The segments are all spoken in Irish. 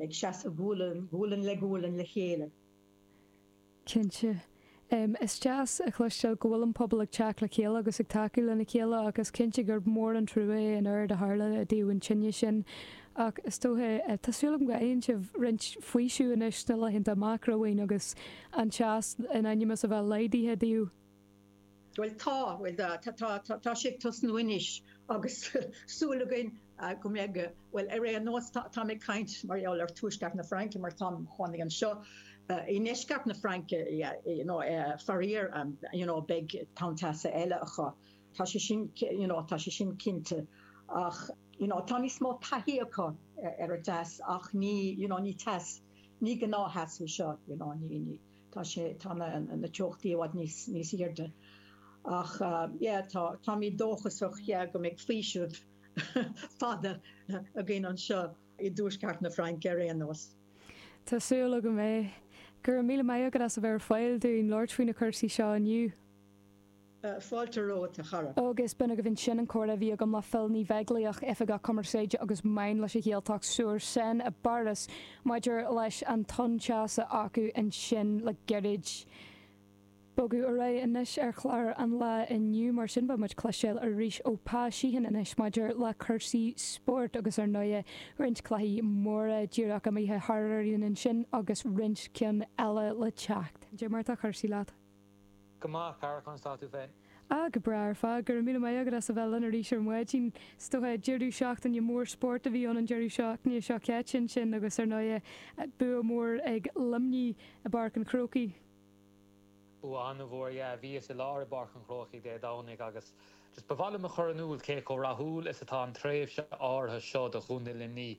Ag seasamh gualainn le gualainn le chéile. Cinnte. Is deas a chloisteáil go bhfuil an pobal ag teacht le chéile agus ag tacú lena chéile ach is cinnte gurb mór an trua é an oiread a tharla i dtaobh an tine sin. Ach is dócha, tá súil agam go fhaigheann sibh roinnt faoisimh anois na laethanta amach romhainn agus an teas in ainm is a bheith laghdaithe daoibh. Bhuel tá, bhuel tá, tá, tá, tá, tá sé ag tosnú anois agus súil againn go mbeidh, bhuel ar aon nós tá, táim ag caint mar gheall ar tuaisceart na Fraince mar táim, tháinig anseo i ndeisceart na Fraince, you know, faraor, you know, beidh tonn teasa eile acu, tá sé sin, you know, tá sé sin cinnte ach, you know, tá níos mó taithí acu ar an dteas ach ní, you know, ní teas, ní gnáth-theas é seo, you know, ní, ní. Tá sé, tá na, na teochtaí i bhfad níos, níos airde ach yeah tá, táimid dóchasach yeah go mbeidh faoiseamh fada againn anseo i dtuaisceart na Fraince ar aon nós. Tá súil agam é. Go raibh míle maith agat as a bheith ar fáil dúinn labhairt faoi na cúrsaí seo inniu. Fáilte romhat, a chara. Agus b'in agaibh ansin an comhrá a bhí agam le Phil Ní Bheaglaíoch, Oifigeach Cumarsáide agus Meáin leis an Ghaeltacht sur Seine i bPáras, maidir leis an tonn teasa acu ansin le gairid. Ag bogadh ar aghaidh anois ar chlár an lae inniu, mar sin beidh muid ag cloisteáil arís ó Pa Sheehan anois maidir le cúrsaí spóirt agus ar ndóigh roinnt cluichí móra díreach imithe thar orainn ansin agus roinnt cinn eile le teacht. Caidé mar tá cúrsaí leat. go maith a chara conas tá tú féin. Ah, go breá ar fad. Go raibh míle maith agat as a bheith linn arís ar maidin. Is dócha, deireadh seachtaine mór spóirt a bhí ann an deireadh seachtaine seo caite ansin agus ar ndóigh, bua mór ag Luimnigh i bPáirc an Chrócaigh. Bua an-mhór, yeah. Bhíos i láthair i bPáirc an Chrócaigh Dé Domhnaigh agus just ba mhaith liom a chur in iúl cé chomh rathúil is atá an tréimhse áirithe seo do Chontae Luimnigh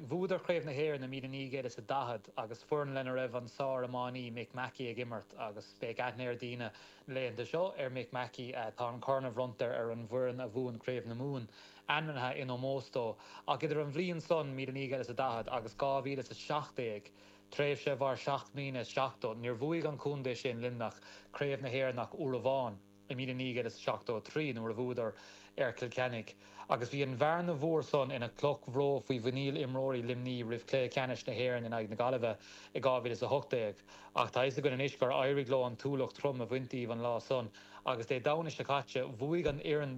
Bhuadar Craobh na hÉireann i 1940 agus foireann lena raibh an sár-iománaí Mick Mackey ag imirt agus beidh aithne ag daoine na laethanta seo ar Mick Mackey. Tá an corn a bhronntar ar an bhfoireann a bhuann Craobh na Mumhan ainmnithe in ómós dó. Ach idir an bhliain san, 1940, agus 2017, tréimhse a mhair seacht mbliana is seachtó, níor bhuaigh an contae sin, Luimneach, Craobh na hÉireann ach uair amháin. i 1973 nuair a bhuadar ar Cill Chainnigh agus bhí an bhearna mhór san ina chloch bhró faoi mhuiníl imreoirí Luimnigh roimh chluiche ceannais na hÉireann in aghaidh na Gaillimhe i 2018 ach tá 'fhios againn anois gur éirigh leo an t-ualach trom a bhaint díobh an lá san agus Dé Domhnaigh seo caite bhuaigh an fhoireann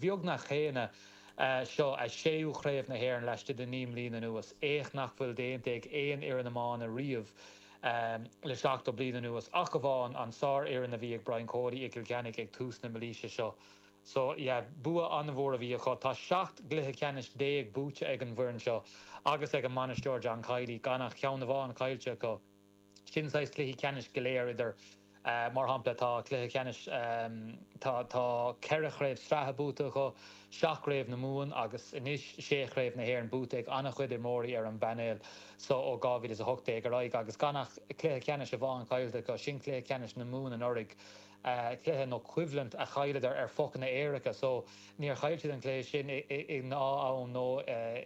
bheagnach chéanna. Seo a séú chraobh na hÉireann laistigh de naoi mbliana anuas, éacht nach bhfuil déanta ag aon fhoireann iomána riamh le seachtó bliain anuas, ach amháin an tsárfhoireann a bhí ag Brian Cody i gCill Chainnigh ag tús na mílaoise seo. So, yeah, bua an-mhór a bhí acu. Tá seacht gcluiche ceannais déag buaite ag an bhfoireann seo agus ag an mbainisteoir John Kiely, gan ach ceann amháin caillte acu. sin saghas cluichí ceannais go léir idir mar shampla tá cluiche ceannais tá tá ceithre chraobh sraithe buaite acu seacht gcraobh na Mumhan agus anois sé chraobh na hÉireann buaite ag an-chuid imreoirí ar an bpainéal so ó 2018 ar aghaidh agus gan ach cluiche ceannais amháin caillte acu sin cluiche ceannais na Mumhan anuraidh cluiche nó coimhlint a chailleadar ar phocanna éirice so níor chaill siad an cluiche sin i ngnáth-am nó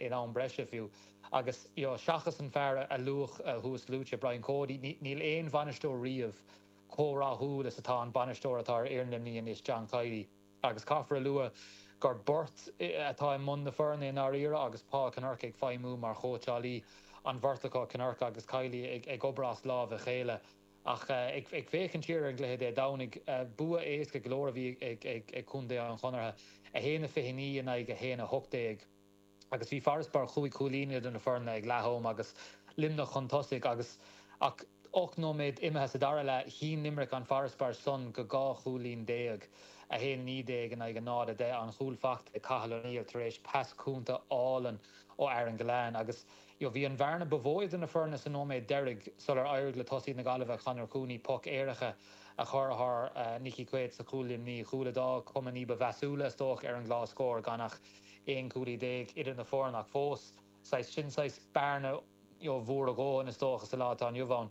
in am breise fiú. Agus seachas an fear a luadh thuasluaite, Brian Cody, níl aon bhainisteoir riamh chomh rathúil is atá an bainisteoir atá ar fhoireann Luimnigh anois, John Kiely. Agus caithfear a lua gur beirt atá i mbun na foirne i ndáiríre agus Paul Kinnerk ag feidhmiú mar chóitseálaí an bheirt acu, Kinnerk agus Kiely ag obair as lámh a chéile. Ach ag féachaint siar ar an gcluiche Dé Domhnaigh, bua éasca go leor a bhí ag contae an Chonartha, 1-29 in aghaidh 1-18. agus bhí farasbarr chúig chúilín idir na foirne ag leath am agus Luimneach chun tosaigh agus ach ocht nóiméad imithe sa dara leath, shín Limerick an farasbarr san go dhá chúilín déag, 1 19 in aghaidh 0 10, an chúl faighte ag Cathal O'Neill tar éis pas cúnta álainn ó Aaron Gillane agus bhí an bhearna ba mhó idir na foirne sa nóiméad deiridh sular éirigh le tosaí na Gaillimhe, Conor Cooney, poc éirice a chur thar Nicky Quaid sa chúl Luimnigh, cúl a d'fhág cuma ní ba mheasúla, is dócha, ar an gclár scóir gan ach. 11 cúilín idir na foirne ach fós saghas, sin saghas bearna mhór a dhóthain is dócha sa lá atá inniu ann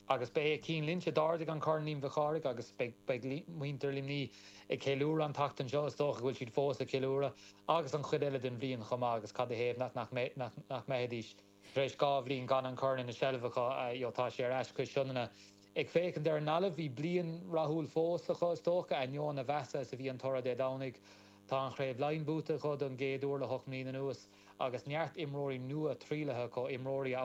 agus ba é Cian Lynch a d'ardaigh an corn Liam Mhic Chárthaigh agus beidh muintir Luimnigh ag ceiliúradh an tseachtain seo is dócha go bhfuil siad fós ag ceiliúradh agus an chuid eile den bhliain chomh maith agus cad ina thaobh nach mbeidh nach mbeidís Tar éis dhá bhliain gan an Corn ina seilbh acu, tá sé ar ais cois Sionainne. Ag féachaint ar an nGaillimh, bhí bliain rathúil fós acu, is dócha, ainneoin a mheasa is a bhí an toradh Dé Domhnaigh. Tá an Chraobh Laighean buaite acu don gcéad uair le hocht mbliana anuas, agus neart imreoirí nua trialaithe acu, imreoirí a